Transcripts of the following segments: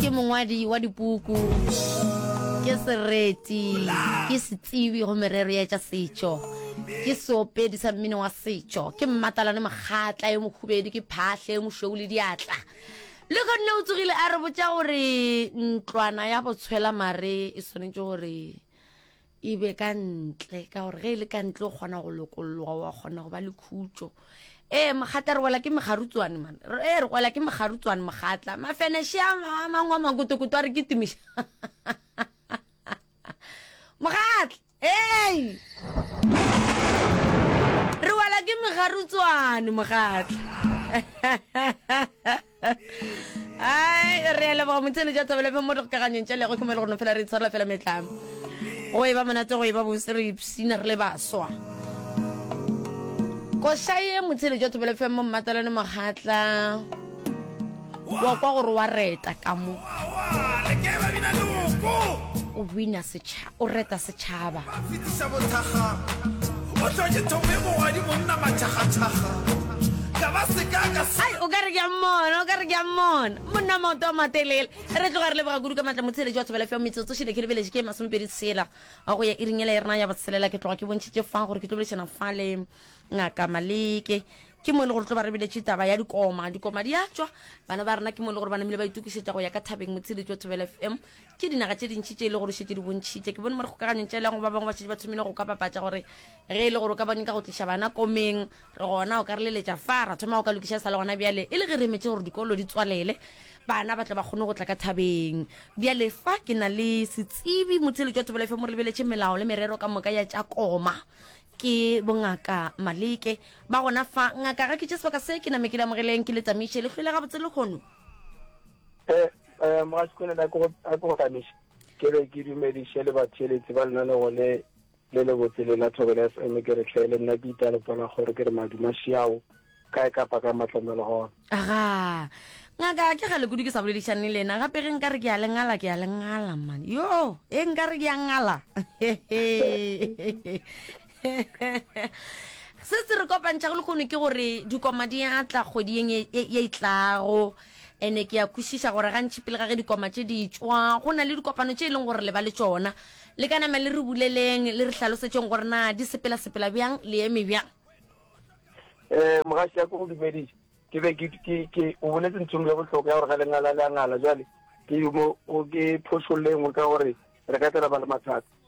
ke mongwadi wa dipuku ke sereti ke setsibi go merero ya tša setšo ke seopedi sa mmino wa setšo ke mmatalane mokgatla yo mokhubedu ke phahle yo mošweu le diatla le gonne o tsogile a re botša gore ntlwana ya botshwela mare e swanetše gore e be ka ntle ka gore ge e le ka ntle o kgona go lokolloga wa kgona go ba le khutso ee mogatla re wela ke megarutswane man ee re wela ke megarutswane mogatla mafeneshe a mangwe a makotokoto a re ke tumiša mogatla ee re wela ke megarutswane mogatla ai re a leboga motshene ja thabela mo re kaganyong tša lego ke mo e le gona fela re itshwarela fela metlamo go e ba monate go e ba bose re ipsina re le baswa košaye motshene ja thabela fm mo mmatalane mogatla wa kwa gore wa reta ka mo o bina setšhaba O reta setšhaba. Ba fetiša bothakga, o tla ke thome mogwadi monna mathakgathaga, ka ba se ka ka se. Ai, o ka re ke a mmona, o ka re ke a mmona. Monna wa maoto a matelele. Re tloga re leboga kudu ka maatla motsheletši wa thobela fiwa metsotso šele ke lebeletse ke masomepedi tshela wa go ya iring ele ya rena ya botshelela. Ke tloga ke bontšhitše fa gore ke tlo boledišana fa le Ngaka Maleke. Ke mo e le gore tlo ba re biletše taba ya dikoma. Dikoma di a tšwa. Bana ba rena ke mo e le gore ba namile ba itokišetša go ya ka thabeng motsheletši wa thobela FM. Ke dinaga tše dintši tše e le gore šetše di bontšhitše. Ke bone mo dikgokaganyong tša elango ba bangwe ba šetše ba thomile go ka bapatša gore ge e le gore o ka ba nyaka go tliša bana komeng, re gona o ka re leletša fa, ra thoma go ka lokiša e sa le gona bjale. E le ge re emetše gore dikolo di tswalele, bana ba tle ba kgone go tla ka thabeng. Bjale fa ke na le setsebi, motheeletši wa Thobela FM o re lebeletše melao le merero ka moka ya tša koma. Ke boNgaka Maleke. Ba gona fa. Ngaka, ga ke tše sebaka se, ke name ke le amogeleng, ke le tamiše. Le hwile gabotse lehono? Eh, Mogasikolela, a ke go- a ke go hlamiše. Ke re ke dumediše le batheeletsi ba lenaneo le le le botse le la Thobela FM, ke re hle le nna ke itale pola gore ke re maduma šiao kae kapa ka matlamelo gona. aga ngaka ke gale kudu ke sa boledišane le ena gape ge nka re ke a le ngala ke a le ngala man yo e nka re ke a ngala se se re kopantšha go lekgono ke gore dikoma di a tla kgwedi yeng e, e, e tlago ene ke ya kwešiša gore gantši pele ga ge dikoma tše di tšwa go na le dikopano tše e leng gore le ba le tsona le ka nama le re buleleng le re hlalosetšeng gore na di sepela-sepela bjang le eme bjang um eh, mogaši ya ko dumediša ke be ke o boletse nthong ya bohloko ya gore ga lengala le a ngala jale ke mo ke phošollengwe ka gore re ka tela ba le mathata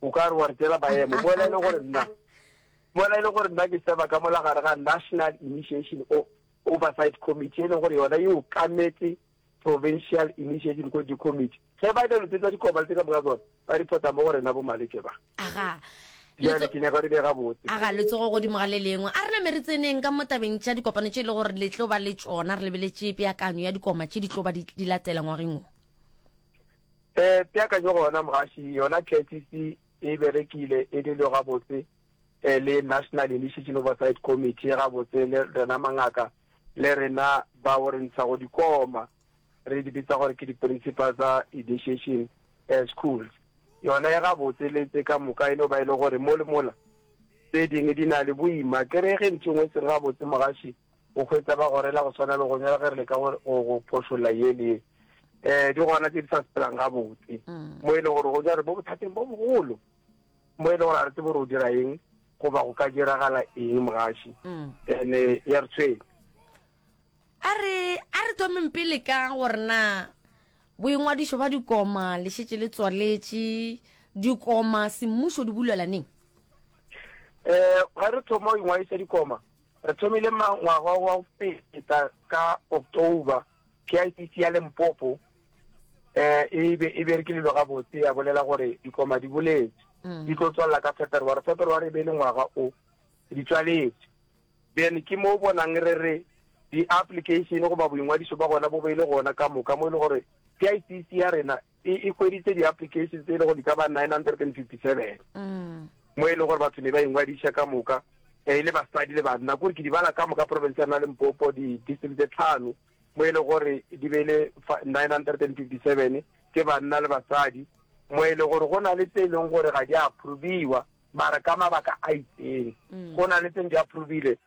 O ka re wa re tšela maemo. Mola e le gore nna, mola e le gore nna ke seba ka mola gare ga National Initiation o Oversight Committee e leng gore yona e okametse Provincial Initiation Quality Committee. Ge ba ile lotse tsa dikobale tse ka moka tsone, ba reporta mo go rena bo malwetse ba. Aga. Jale ke nyaka re be gabotse. Aga letsogo godimo ga le lengwe. A re name re tseneng ka mo tabeng tša dikopano tše e le gore le tlo ba le tšona re lebeletše peakanyo ya dikoma tše di tlo ba di, di latela ngwageng wo. E peakanyo gona mogaši, yona KICC e berekile e le leo gabotse e le National Initiation Oversight Committee gabotse le rena mangaka le rena bao re ntshago dikoma re di bitsa gore ke di principal tsa initiation schools yona e gabotse le tse ka moka e no ba e le gore mo le mola tse dingwe di na le boima ke re ge ntho engwe se re gabotse mogaši O hwetša ba gorela go swana le gonya le ge re leka go, go, go phošolla ye le ye. Eh, di gona tše di sa sepelang gabotse. Mm. Mo e le gore gonya re mo bothateng bo bogolo. Mo e le gore a re tsebe gore o dira eng, goba go ka diragala eng mogaši. Mm. Ene ya re tshwenya. A re, a re thomeng pele ka gore na boingwadišo ba dikoma le šetše le tswaletše dikoma semmušo di bulelaneng. Eh, ga re thoma go ingwadiša dikoma, Re thomile ngwaga wa go feta ka October, PICC ya Limpopo e be e berekilelo gabotse ya bolela gore dikoma di boletse mm. di tlo tswalela ka February. February e be e le ngwaga o di tswaletse, then ke mo bonang re re di-application goba boingwadiso ba gona bo be e le gona ka moka mo e le gore PICC ya rena e e hweditše di-applications tse e le gore di ka ba 957 mo e le gore batho ne ba ingwadiša ka moka e le basadi le banna kore ke di bala ka moka province ya rena le mpopo di-district tse tlhano mo e le gore di be le 957 ke banna le basadi mo e le gore go na le tse e leng gore ga di approviwa mara ka mabaka a itseng go na le tseng di approvile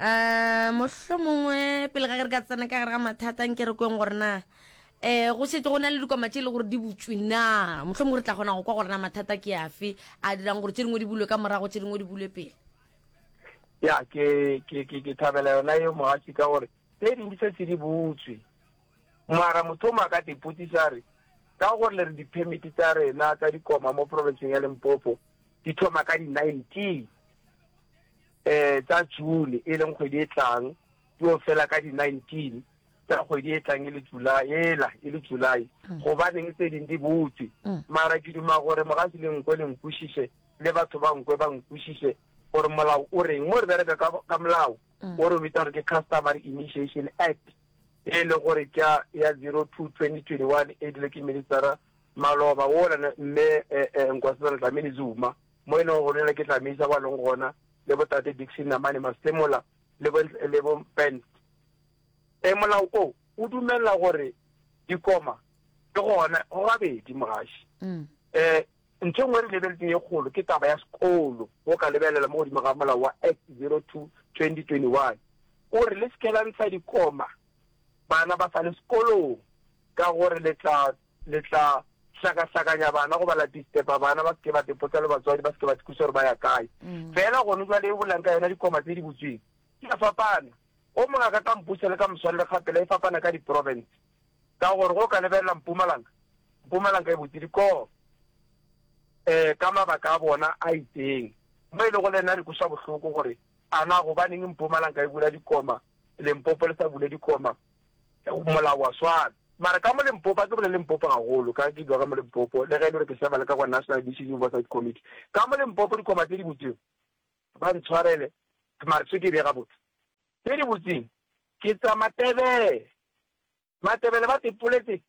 a mohlho mongwe pele ga re ka tsena ka gare ga mathata nke re kweng gore na eh go setse go na le dikoma tse e le gore di butswe na mohlho mongwe re tla kgona go kwa gore na mathata ke afe a dirang gore tse dingwe di bulwe ka morago tse dingwe di bulwe pele ya ke ke ke ke thabela yona yo mogatsi ka gore tse dingwe se se di butswe mara motho o mo a ka tepotsisa re ka gore le re di-permit tsa rena tsa dikoma mo provinceng ya limpopo di thoma ka di-nineteen Ee, tša June, e leng kgwedi e tlang, di yo fela ka di 19 tša kgwedi e tlang, e le July, ela e le July. Gobaneng tse ding di butšwe? Mara ke duma gore mogasi le nkwe le nkwešiše, le batho ba nkwe ba nkwešiše gore molao o reng. Mo re bereka ka, ka molao o re o bitša gore ke Customary Initiation Act, e le gore ke ya, ya 02-2021, e edilwe ke Minister-ra Maloba, wola ne, Mme, eh, eh, Nkosazana Dlamini-Zuma. mo e lego go rela ke Dlamisa ba leng gona, le botate Dickson Namane Masemola le bo, le bo Mpens. E, molao o o dumelela gore dikoma ke gona go gabedi mogaši. Mm. E, ntho e nngwe re lebeletseng e kgolo ke taba ya sekolo, o ka lebelela mo godimo ga molao wa Act 02 2021 o re le sekela ntsha dikoma bana ba sa le sekolong ka gore le tla Le tla hlakahlakanya bana goba la disturba bana ba se ke ba tepotsa le batswadi ba se ke ba tikusa gore ba ya kae mm. fela gone jwa le e bolang ka yona dikoma tse di botsweng ke a fapana o mongwe a ka ka mpusa le ka moswanele gapela e fapana ka di-province ka gore go ka lebelela mpumalanga mpumalanga e botse dikoo um ka mabaka a bona a itseng mo e le go le nna dikosa bohloko gore a na gobaneng mpumalanga e bula dikoma lempopo le sa bule dikoma Molao wa swana. Mara ka mo Limpopo, a ke bole Limpopo gagolo, ka ke dula ka mo Limpopo, le ge e le gore ke serva le ka kwa National Addiction Oversight Committee. Ka mo Limpopo, dikgoma tse di butsweng, ba ntshwarele, mara tshwe ke bje gabotse, tse di butsweng ke tsa Matebele. Matebele ba tepoletse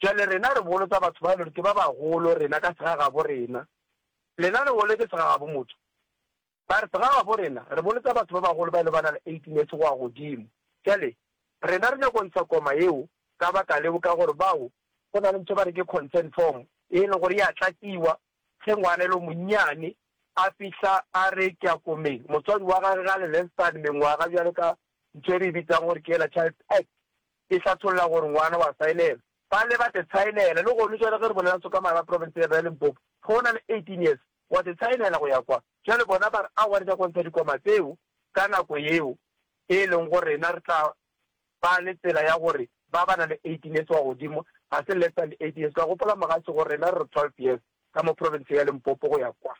Bjale rena re bolotsa batho ba e le gore ke ba bagolo rena ka segagabo rena. Lena le bolotse segagabo motho? Ba re segagabo rena re bolotsa batho ba bagolo ba e le ba na le 18 years go ya godimo. Bjale rena re nyako ntsha koma yeo ka baka leo ka gore bao go na le ntho e ba re ke consent form e e le gore ya tlatšiwa ge ngwana e le monnyane a fihla a re ke ya komeng motswadi wa gage ga le less than mengwaga bjalo ka Ntho e re e bitsang gore ke yela Child Act e hlatholla gore ngwana o a saenelwa. Ba ne ba te saenela, le gonu jwale ge re bolela Sokamara ba profenseng ya rena ya Limpopo, ge o na le eighteen years, o a te saenela go ya kwa. Jwale bona ba re aowa re nyaka go ntsha dikoma tseo ka nako yeo e leng gore rena re tla ba le tsela ya gore ba ba na le eighteen years go ya godimo ga se less than eighteen years. Ke a gopola Mogatse gore rena re re twelve years ka mo profenseng ya Limpopo go ya kwa.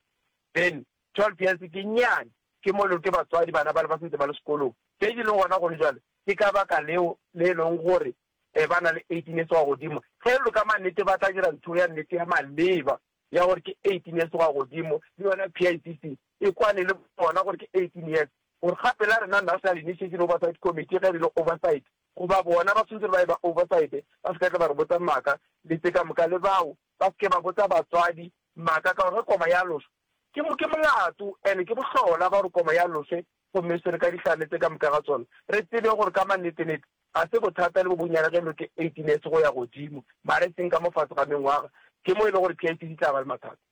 Then Tšol Piense, Ke nnyane, ke molelo ke batswadi, bana bale ba sentse ba le sekolong. Tše di leng gona gone bjale ke ka baka leo le e leng gore e ba na le 18 years wa godimo. Ge lo ka mannete ba tla dira ntho ya nnete ya maleba ya gore ke 18 years wa godimo, le yona PICC e kwane le bona gore ke 18 years, gore gape la rena National Initiation Oversight Committee ge re ile oversight goba bona ba swantse ba ye ba oversight ba se ka tla ba re botsa maaka le tse ka moka, le bao ba se ke ba botsa batswadi maaka ka gore ge koma ya lošwa. Ke, ke molato and ke bohlola ba gore koma ya loswe gomme e swere ka dihlane tse ka moka ga tsona. Re tsebe gore ka mannetenete ga se bothata le bo bonnyane ge lo ke eighteen years go ya godimo, mara e seng ka mo fase ga mengwaga, ke mo e le gore PIC di tla ba le mathata.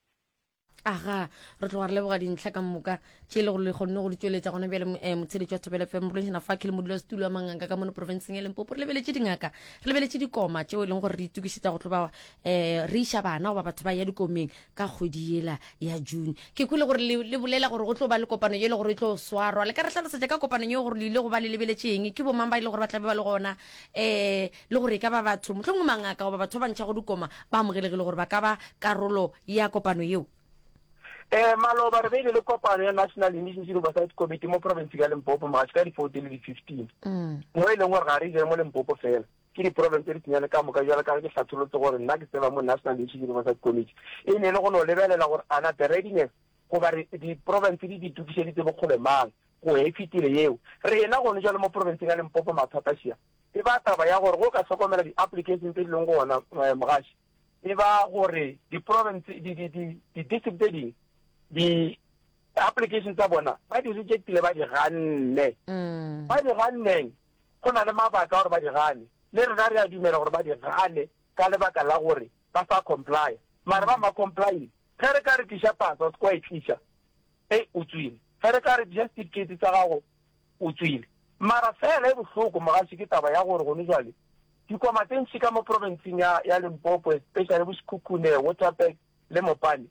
Aga, re tloga re leboga dintlha ka moka tše e le gore le kgonne go di tšweletša gona bjale. Eh, motsheletši wa Thobela FM, Morweng Shenafaki le modulasetulo wa manganga ka mono profenseng ya Limpopo, re lebeletše dingaka, re lebeletše dikoma tšeo e leng gore re itokišetša go tlo ba um re iša bana goba batho ba ya dikomeng. ka kgwedi yela ya june ke kwele gore le, le bolela gore go tlo ba le kopano yele gore e tlo swarwa le ka re hlalosetša ka kopanong yeo gore le ile go ba le lebeletše eng ke bomang ba ile gore ba tlabe ba le gona um le gore e ka ba batho mohlomongwe mangaka goba batho ba bantšha go dikoma ba amogelegile gore ba ka ba karolo ya kopano yeo um maloba re beile le kopano ya national emergency oversight committee mo province ya limpopo magatši ka di-fourteen le di-fifteen mm. mo e leng gore ga re jere mo limpopo fela Ke diproblem tše ditsenyane ka moka, bjalo ka ge ke hlatholotse gore nna ke tseba mo National Issues Oversight Committee e ne e le go no lebelela gore a na the readiness goba re diprovince tse di di tokišeditse bokgole mang go e fetile yeo. Rena gone jwale mo provinceng ya Limpopo mathata šia e ba taba ya gore go ka hlokomela di-application tse di leng go ona eh, mogaši e ba gore di-province di-district tse ding di application tsa bona ba di rejectile ba di ganne mm. ba di ganneng go na le mabaka gore ba di gane, le rena re a dumela gore ba di gane ka lebaka la gore ba sa complya, mara ba ma complyile. Ge re ka re tliša pasa, se kwa e tliša, ei, o tswile. Ge re ka re tliša setifikeiti sa gago, o tswile. Mara feela e bohloko, mogaši, ke taba ya gore gone jwale dikoma tse ntši ka mo province-ing ya, ya Limpopo, especially bo Sekhukhune, Waterberg le Mopane,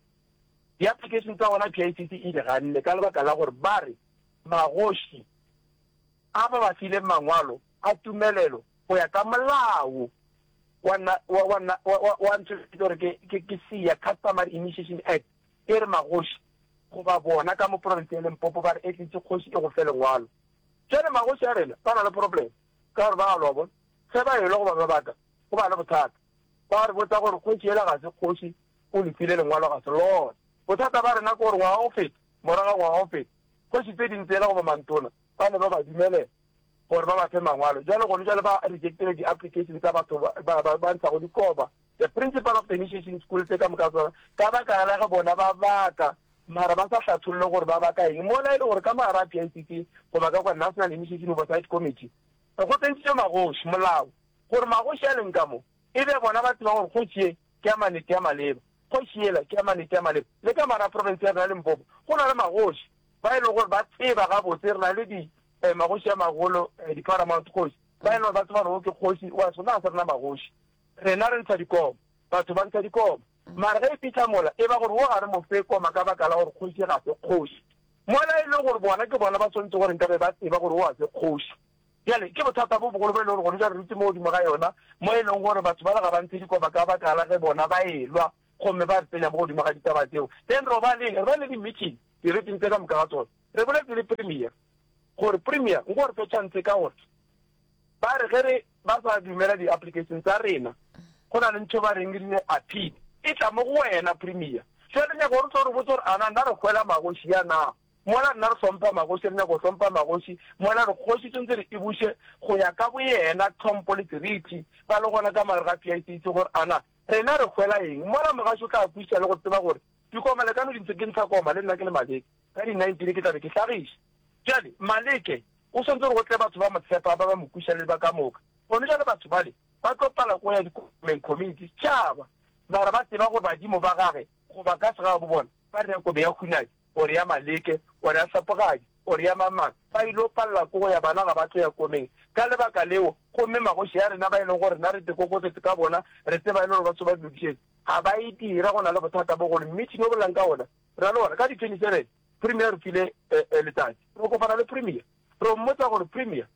di-application tsa gona PICC e di ganne ka lebaka la gore ba re magoši, a ba ba fileng mangwalo a tumelelo go ya ka molao wa nna wa wa nna wa wa wa ntho e gore ke ke ke SIA Customary Initiation Act e re magoši goba bona ka mo province ya Limpopo ba re etletse kgoši e go fe lengwalo jale magoši a rena ba na le problem ka gore ba a lobo ge ba elo goba ba baka go ba le bothata ba re botsa gore kgoši ela ga se kgoši o le file lengwalo ga se lona bothata ba rena ke gore ngwaga o feta morago ngwaga o feta kgoši tse ding tsela goba mantona ba ne ba ba dumelela gore ba ba fe mangwalo, bjalo gone bjale ba rejectile di application tsa batho ba ba ba ntshago dikoba. The principal of the initiation school tše ka moka tsona ka baka la ge bona ba baka mara ba sa hlatholle gore ba baka eng mola e le gore ka mo gare a PICC goba ka kwa National Initiation Oversight Committee go tsentšitšwe magoši molao gore magoši a leng ka mo e be bona ba tseba gore kgoši ye ke ya manete ya maleba kgoši yela ke ya manete ya maleba le ka mara province ya rena Limpopo go na le magoši ba e lego gore ba tseba gabotse re na le di eh, magoši a magolo eh, di-paramount kgoši ba e lego gore ba tseba gore o ke kgoši wa sona a se rena magoši rena re ntsha dikomo batho ba ntsha dikomo mara ge e fitlha mola e ba gore wo ga re mo fe koma ka baka la gore kgoši ga se kgoši mola e le gore bona ke bona ba tshwanetse gore nkabe ba tseba gore o a se kgoši jale ke bothata bo bogolo bo e le gore gone ja re rutse mo godimo ga yona mo e leng gore batho ba le ga ba ntshe dikoba ka baka la ge bona ba elwa gomme ba re tsenya mo godimo ga ditaba tseo, then robaneng re ba le di-meeting diriting tse ka moka ga tsone, re boletse le Premier gore Premier nko re fe chance ka gore ba re ge re ba sa dumela di-application tsa rena go na le ntho ba reng re dire appeal e tla mo go wena Premier. Jwale re nyaka gore tlo re botse gore ana nna re hwela magoši ya na mola nna re hlompha magoši re nyaka go hlompha magoši mola re kgoši tshwanetse re e buše go ya ka boyena tlhompo le seriti ba le gona ka mare ga PICC gore ana Rena re hwela eng? Mola mogašo o tla kwešiša le go tseba gore dikoma le ka no di ntshe ke ntsha koma le nna ke le Maleke. Ka di 19 ke tla be ke hlagiša. Bjale, Maleke, go swantse gore go tle batho ba mo tshepa, ba ba mo kwešiša le ba ka moka. Gomme bjale batho bale ba tlo pala go ya dikomeng, community, setšhaba, mara ba tseba gore badimo ba gage, goba ka segagabo bona, ba reka kome ya hunadi. o re ya maleke, o re ya sepogadi, o re ya mang-mang, ba il'o palela ko go ya, bana ga ba tlo ya komeng. Ka lebaka leo, gomme magoši a rena ba e lego gore rena re dikokotete ka bona, re tseba e le gore ba tso ba lokišetša, ga ba e dira, go na le bothata bo golo. Mmitšhini o bolelang ka wona, rena le wona, ka di 27, Premier a re file letšatši. Re kopana le Premier, re o mmotsa gore, Premier,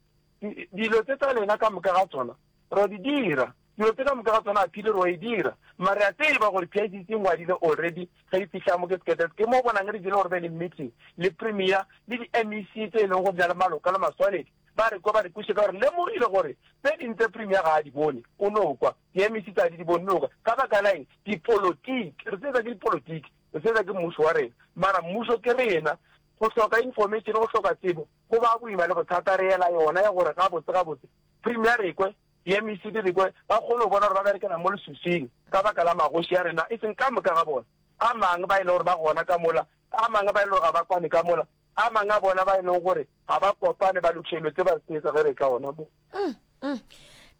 dilo tse tsa lena ka moka ga tsona, Ra di dira. Dilo tse ka moka ga tsona Aphili ro e dira. Mara re a tseba gore PICC e ngwadile already ge e fihla mo ke Sketes. Ke mo o bonang re jele gore be le meeting le Premier le di MEC tse e leng gore di na le maloka le maswaledi. Ba re kwa ba re kwešiša ka gore re lemogile gore tse ding tse Premier ga a di bone o no kwa, di MEC tsa di di bone no kwa. Ka baka la eng? Dipolotiki. Re sebetsa ke dipolotiki. Re sebetsa ke mmušo wa rena. Mara mmušo ke rena. Go hloka information, go hloka tsebo go ba boima le bothata. Re ela yona ya gore gabotse gabotse Premier Rekwe le MECD Rekwe ba kgone go bona gore ba berekela mo leswiswing ka baka la magoši a rena, e seng ka moka ga bona. A mang ba e lego gore ba gona ka mola, a mang ba e lego gore ga ba kwane ka mola, a mang a bona ba e lego gore ga ba kopane ba lokiša dilo tse ba se etsa ge re tla gona mo.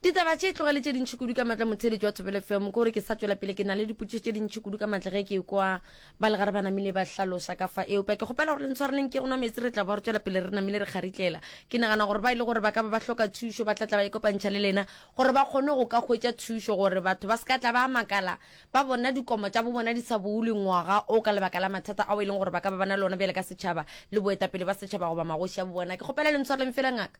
Ditaba tše tloga le tše dintši kudu ka matla motheeletši wa Thobela FM. Ke gore ke sa tšwela pele ke na le dipotšišo tše dintši kudu ka matla ge ke kwa Ba legare ba namile ba hlalosa ka fa eupša ke kgopela gore le ntshwareleng ke go nwa metsi re tla ba re tšwela pele re namile re kgaritlela. Ke nagana gore ba e le gore ba ka ba ba hloka thušo ba tla tla ba ikopantšha le lena gore ba kgone go ka hwetša thušo gore batho ba se ka tla ba makala ba bona dikomo tša bo bona di sa boulwe ngwaga o ka lebaka la mathata ao e leng gore ba ka ba ba na le ona bjale ka setšhaba le boetapele ba setšhaba goba magoši a bo bona. Ke kgopela le ntshwareleng fela ngaka.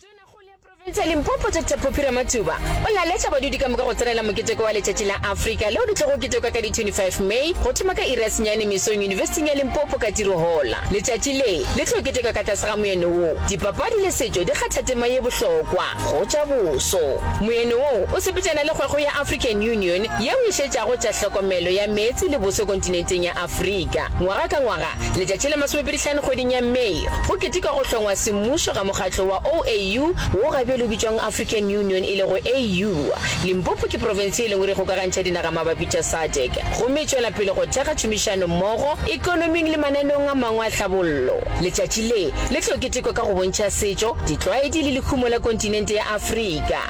Tonakgolo ya profense ya Limpopo Doctor Phophi Ramathuba o laletša badudi ka moka go tsenela moketeko wa letšatši la Afrika leo le tlogo ketekwa ka di 25 May go thoma ka iri ya senyane mesong Univesithing ya Limpopo ka tiro hola. Letšatši le le tlo ketekwa ka tlase ga moyeno wo Dipapadi le setšo di kgatha tema ye bohlokwa go tša boso. Moyeno wo o sepetšana le kgwego ya African Union yeo e šetšago tša hlokomelo ya meetse le boso kontinenteng ya Afrika. Ngwaga ka ngwaga, Letšatši la masomepedihlano kgweding ya May go ketekwa go hlongwa semmušo ga mokgatlo wa OAU wo ga bjale o bitšwang African Union e lego AU. Limpopo ke profense ye lengwe re kgokagantšha dinaga mabapi tša SADC gomme e tšwela pele go thekga tšhomišano mmogo ekonoming le mananeong a mangwe a tlhabollo. Letšatši le le tlo ketekwa ka go bontšha setšo, ditlwaedi le lehumo la kontinente ya Afrika.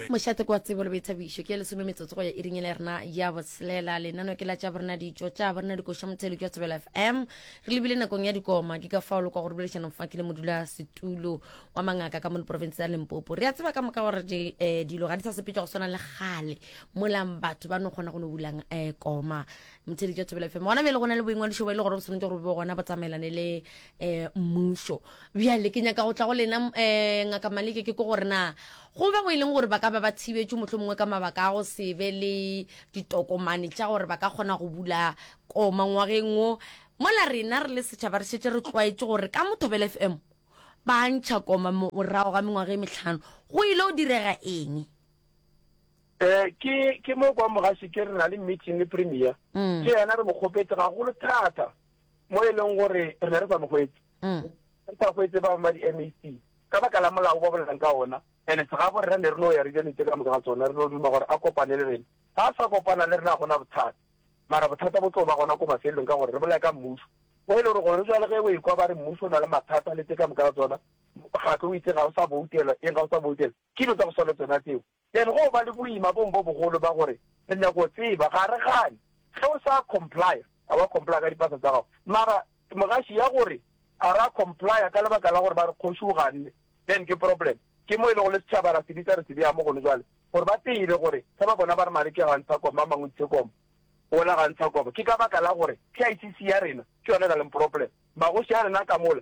Mošate kwa tsebo le boithabišo ke ya lesome metsotso go ya iring e le rena ya botshelela. Lenano ke la tša borena ditšo tša borena dikoša mothelo ke wa tsebela FM. Re lebile nakong ya dikoma ke ka fao le kwa go rebelešanong fa ke le modula setulo wa mangaka ka mo leporofense ya Limpopo. Re a tseba ka moka gore di, eh, dilo ga di sa sepetšwa go swana le gale molang batho ba no kgona go no bulang eh, koma mothelo ke wa tsebela FM. Gona bjale go na le boingwadišo bo e le gore bo swanetše gore bo gona bo tsamaelane le eh, mmušo bjale ke nyaka go tla go lena eh, ngaka maleke ke ko gore na go be go e leng gore ba ka ba ba thibetšwe motlho mongwe ka mabaka a go se be le ditokomane tša gore ba ka kgona go bula koma ngwageng o mola rena re le setšhaba re šetse re tlwaetse gore ka mothobele f m ba ntšha koma morago ga mengwaga e metlhano go ile o direga eng um ke ke mo kwa mogase ke re na le meeting le premier mm. ke yena re mo kgopetse gagolo thata mo e leng gore re ne re sa mo hwetse re sa hwetse ba ma di-mac ka baka la molao ba bolelang ka ona ene segabo rena ne re no ya re jane tse ka moka ga tsona re no duma gore a kopane le rena ga a sa kopana le rena gona bothata mara bothata bo tlo ba gona ko mafelelong ka gore re bolaya ka mmuso mo e le gore gore re jale ge o ekwa ba re mmuso o na le mathata le tse ka moka ga tsona gape o itse ga o sa boutela eng ga o sa boutela ke dilo tsa go swa le tsona tseo Then go ba le boima bong bo bogolo ba gore re nyaka go tseba. Ga re gane ge o sa complya, a wa complya ka dipasa tsa gago, mara ke mogaši ya gore a ra complya ka lebaka la gore ba re kgoši o ganne, then ke problem. Ke mo e lego le setšhaba ra se bitsa re se bea mo gone jwale gore ba tsebe gore ge ba bona ba re Maleke ga a ntsha kobo, ba mang o ntshitse kobo, wola ga a ntsha kobo, ke ka baka la gore PICC ya rena ke yona e na leng problem. Magoši a rena a ka mola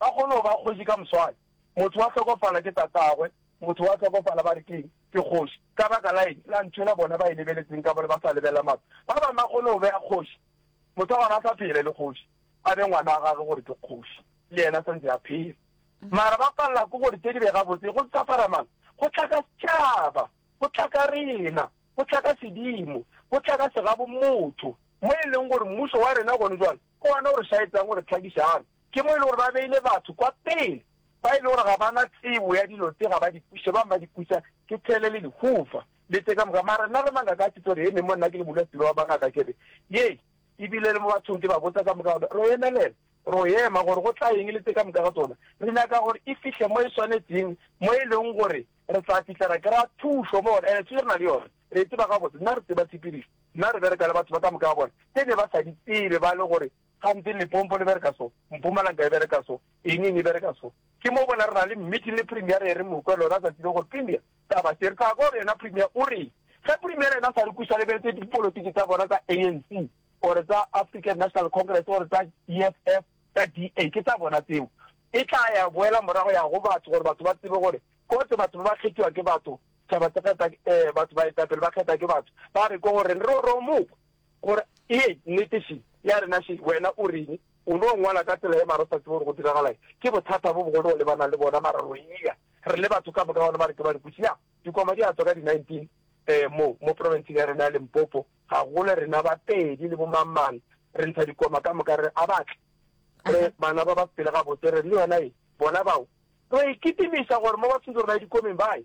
Ba kgone go ba kgoši ka moswane. Motho wa hlokofala ke tatagwe, motho wa hlokofala ba re ke'ng? Ke kgoši. Ka baka la eng? La ntšhwela bona ba e lebeletseng ka mo le ba sa lebelela maru. Ba bangwe ba kgone go bea kgoši, motho wa gona a sa phela e le kgoši, a be ngwana wa gagwe gore ke kgoši, le yena a sa ntse a phela. Mara ba palela ke gore tše di be gabotse go mpshafara mang? Go tla ka setšhaba, go tla ka rena, go tla ka sedimo, go tla ka segabomotho, mo e leng gore mmušo wa rena gone jwale ke wona o re šaetsang go re hlakišana. Ke mo e le gore ba beile batho kwa pele ba e le gore ga ba na tsebo ya dilo tse ga ba di kwiše, bangwe ba di kwiša ke thele le lehufa le tše ka moka. Mara nna re mangaka a tshitso re eme mo, nna ke le modulasetilo wa bangaka, ke re, Ye e bile le mo bathong ke ba botsa ka moka gore ro emelela, ro ema gore go tla eng le tše ka moka ga tsona. Re nyaka gore e fihle mo e swanetšeng, mo e leng gore re tla fihla ra kry-a thušo mo gona, ene thušo re na le yona, re e tseba gabotse. Nna re tseba tshepedišo, nna re bereka le batho ba ka moka ga bona tše ne ba sa di tsebe ba le gore Gantsi Lepompo le bereka so, Mpumalanga e bereka so, Enying e bereka so. Ke mo bona re na le meeting le Premier re ere mokwe lona tsatsi le gore Premier taba se re tla kwa go yena Premier o reng ge Premier yena sa re kusa lebeletse dipolotiki tsa bona tsa ANC or tsa African National Congress or tsa EFF tsa DA ke tsa bona tseo e tla ya boela morago ya go batho gore batho ba tsebe gore kotse batho ba kgethiwa ke batho taba tsa kgetha eh batho ba etapele ba kgetha ke batho ba re ko gore re ro mokwe Gore e ye nnete še ya rena še, wena o reng? O no ngwala ka tsela ye mara o sa tsebe gore go diragalaeng? Ke bothata bo bogolo o lebanang le bona mara ro e ya. Re le batho ka moka gona ba re ke barikutši. Ya, dikwama di a tswa ka di 19 eh, mo, mo profenseng ya rena ya Limpopo. Ga gole rena ba pedi le bo mang-mang re ntsha dikwama ka moka re re a ba tle. Re bana ba ba pele gabotse, re re le yona ye, bona bao. Ro e kitimiša gore mo ba tshwetso rena ye dikwameng ba ye.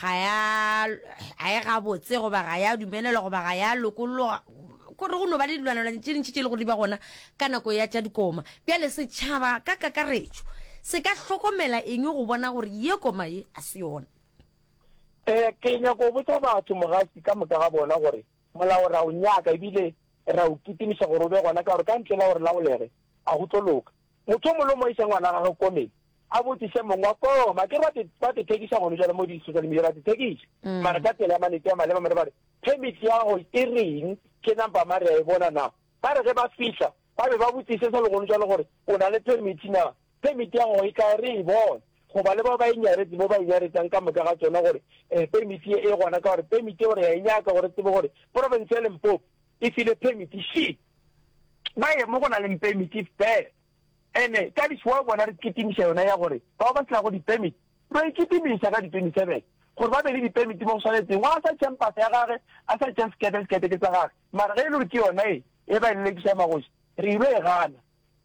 ga ya ga e gabotse goba ga ya dumelelwa goba ga ya lokolloga kore go no ba le dilwanelwane tše dintšhi tše e le go di ba gona ka nako ya tša dikoma bjale setšhaba ka kakaretšo se ka hlokomela eng go bona gore ye koma ye a se yona um ke nyako botsa batho mogasi ka moka ga bona gore molao ra o nyaka ebile ra o kitimiša gore o be gona ka gore ka ntle la gore laolege a go tlo loka Mothomolo o mo iša ngwana wa gagwe komeng, a botšiše mong wa koma. A ke re ba te thekiša gone jalo mo di-social media, ba te thekiša. Mm. Mara ka tsela ya manete ya maleba, mare ba re, permit ya gago e reng, ke number mare ya e bona na. Ba re ge ba fihla, ba be ba botšiše sa le gone jalo gore o na le permit na. Permit ya gago e tla re e bone, goba le bao ba e nyaretse, bo ba e nyaretsang ka moka ga tsona gore eh, permit ye e gona, ka gore permit ye gore ya e nyaka gore tsebe gore province ya Limpopo e file permit. Shit! ba ye mo go na leng pemiti fela. Ene ka di four bona re kitimiša yona ya gore bao ba se nago dipemiti re a ikitimiša ka di twenty seven gore ba be le dipemiti mo go swanetseng. Wa sa tšheng pasa ya gage, a sa tšheng sekete, sekete ke sa gage. Mara ge e le gore ke yona e e ba e lelekiša magoši, re ile e gana.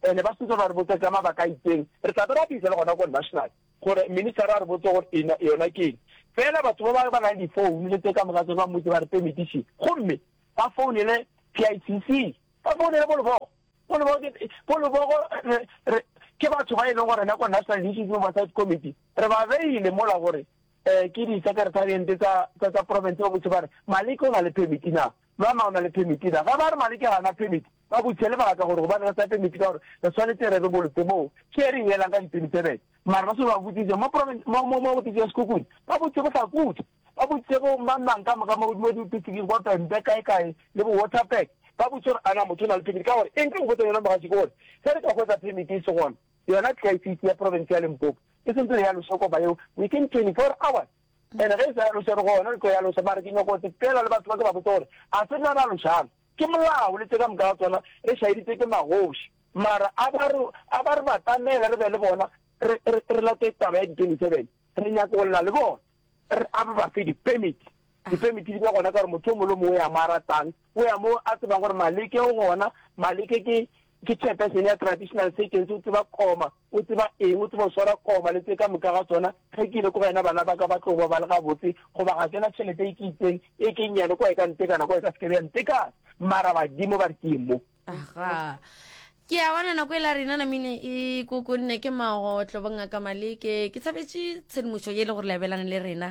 Ene ba sentse ba re botsa ka mabaka a itseng, re tla be ra bitsa le gona ko national gore ministera a re botse gore e yona ke eng. Fela batho ba ba ba na le di founu le tse ka moka tse ba mmotse ba re pemiti šee. Gomme Ba founele PICC. Ba founele Bolobogo. Bolobogo ke, Bolobogo re, re, ke batho ba e leng gore nako National Initiative Oversight Committee, re ba beile mola gore eh, ke di-secretariente tsa, tsa, tsa province ba botse ba re, Maleke o na le permit na? Lwana o na le permit na? Ge ba re Maleke ga na permit, ba botse lebaka gore gobane re sa permit ka gore re tshwanetse re re bolotse moo ke re e elang ka di-27 mara ba se ba botsitse mo province mo mo mo office ya Sekhukhune ba botse go sa kudu Ba boditše bo mang-mang ka moka mo godimo diopisiking kwa Pembe, kae-kae, le bo Waterberg. Ba boditše gore, A na motho o na le phemiti? Ka gore eng? Ke go botsa yona mogatši, ke gore, Ge re ka hwetša phemiti e se gona, yona Tliaifiti ya profense ya Limpopo e sentse re ya loša kopa yeo within 24 hours. And ge e sa ya loša, re gona re tlo ya loša. Mara ke nyako go sepela le batho ba, ke ba botse gore, A se nna ra lošang? Ke molao le tše ka moka ga tsona re šaeditšwe ke magoši. Mara a ba re, a ba re batamele re be le bona, re, re, re late taba ya di 27. Re nyako go lla le bona. re a ba fe dipemiti dipemiti di ba gona ka gore motho o mongwe le mongwe o ya mo a ratang o ya mo a tsebang gore maleke o gona maleke ke ke chairperson ya traditional seconds o tseba koma o tseba eng o tseba o swara koma le tse ka moka ga tsona ge ke ile ko wena bana ba ka ba tlo ba ba le gabotse goba ga ke na tšhelete e ke itseng e ke nnyane kwa e ka ntekana kwa e ka sekebe ya ntekana mara badimo ba re ke mo aga ke a bona nako e la rena namine e kokonne ke magotlo bongaka maleke ke tshabetse tshedimošo ye e le gore lebelana le rena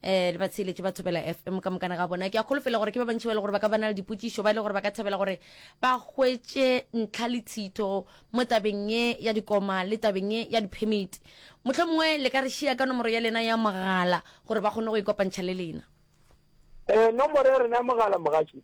eh le ba tsheletše ba thobela fm ka mokana ga bona ke a kgolofela gore ke ba bantši ba e le gore ba ka bana le dipotšišo ba e le gore ba ka thabela gore ba hwetše ntlha le tshito mo tabeng ye ya dikoma le tabeng ye ya diphemiti motlho mongwe le ka re šia ka nomoro ya lena ya mogala gore ba kgone go ikopantšha le lena um nomoro ya rena ya mogala mogatši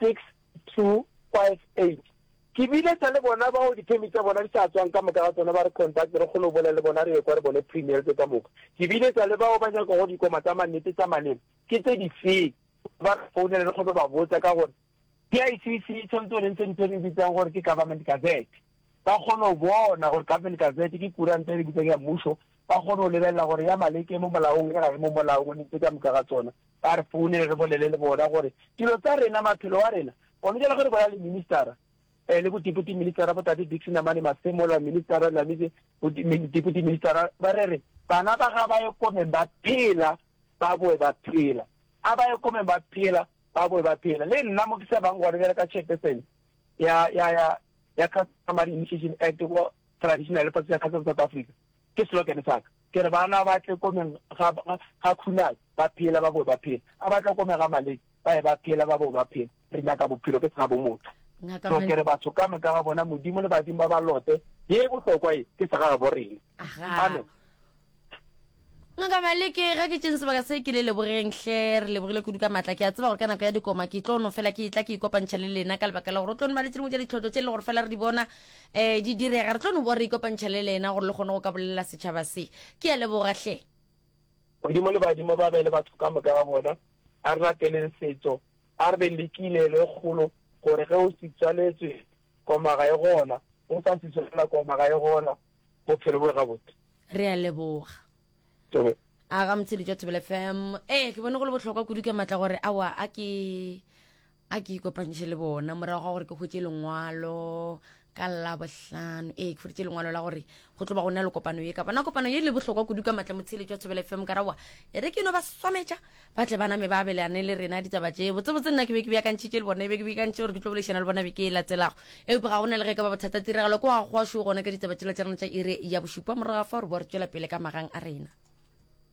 6258 Ke bile sa le bona bao diphemiti tša bona di sa tswang ka moka ga tsona ba re contact re kgone go bolela le bona re ekwa re bone premierse ka moka ke bile sa le bao ba nyakago dikoma tsa mannete tsa maleba ke tse difeng ba re founele re kgone go ba botsa ka gore PICC e tshwanetse gore e ntshe ntho e re bitsang gore ke government gazette ba kgone go bona gore government gazette ke kuranta e re bitsang ya mmušo ba kgone go lebelela gore ya Maleke e mo molaong e ga e mo molaong o ne tse ka moka ga tsona Ba re founele re bolele le bona gore dilo tsa rena, maphelo wa rena. Gona jalo ge re bolela le ministara, le bo Deputy Ministara bo Tate Dickson Amane Masemola, Ministara Lamize, bo Deputy Ministara ba re re bana ba ga ba ye komeng ba phela ba boe ba phela. A ba ye komeng ba phela ba boe ba phela. Le nna mo ke sa bang gona jalo ka Chairperson ya ya ya ya Customary Initiation Act, Traditional Practice Council of South Africa, Ke slogan sa ka. Ke re bana ba tle ko meng ga, ga Khunalo, ba phela, ba bowe ba phela. A ba tle ko me ga Maleki, ba ye ba phela, ba bowe ba phela. Re nyaka bophelo ke sena bomotho. So ke re batho ka moka ga bona, Modimo le badimo ba ba lote, ye e bohlokwa ye, ke sega gabo rena. Amen. Ngaka Maleke, ga ke tšeng sebaka se ke le lebogeng hle, re lebogile kudu ka matla. Ke a tseba gore ka nako ya dikoma ke tlo no fela ke etla ke ikopantšha le lena ka lebaka la gore o tlo no ba le tše dingwe tša ditlhotlo tše e le gore fela re di bona Ee, di direga. Re tlo no boa re ikopantšha le lena gore le kgone go ka bolelela setšhaba se. Ke a leboga hle. Modimo le badimo ba be le batho ka moka ga bona. A re lateleng setso, a re be le kilelo e kgolo gore ge o se tswaletswe koma ga e gona, o sa se tswalela koma ga e gona, bophelo bo gabotse. Re a leboga. Tobe. A ga motshedi jwa Thobela FM. Ee, ke bone go le bohlokwa kudu ka matla gore awa a ke a ke ikopantšhe le bona morago ga gore ke hwetše lengwalo ka labohlano ee ke hwetše lengwalo la gore go tlo ba go na le kopano ye ka bona kopano ye le bohlokwa kudu ka matla motsheletšo wa thobela fm ka rawa e re ke no ba swametša ba tle baname ba abelane le rena ditaba tše botsebotse nna ke be ke beakantšhitše le bona e be ke beakantšhe gore ke tlo bolešana le bona be ke e latelago epe ga go na le ge ka ba bothata tiragalo ko ga goa šo gona ka ditaba tšela tša rena tša ire ya bošupa morago ga fa gore bo re tšwela pele ka magang a rena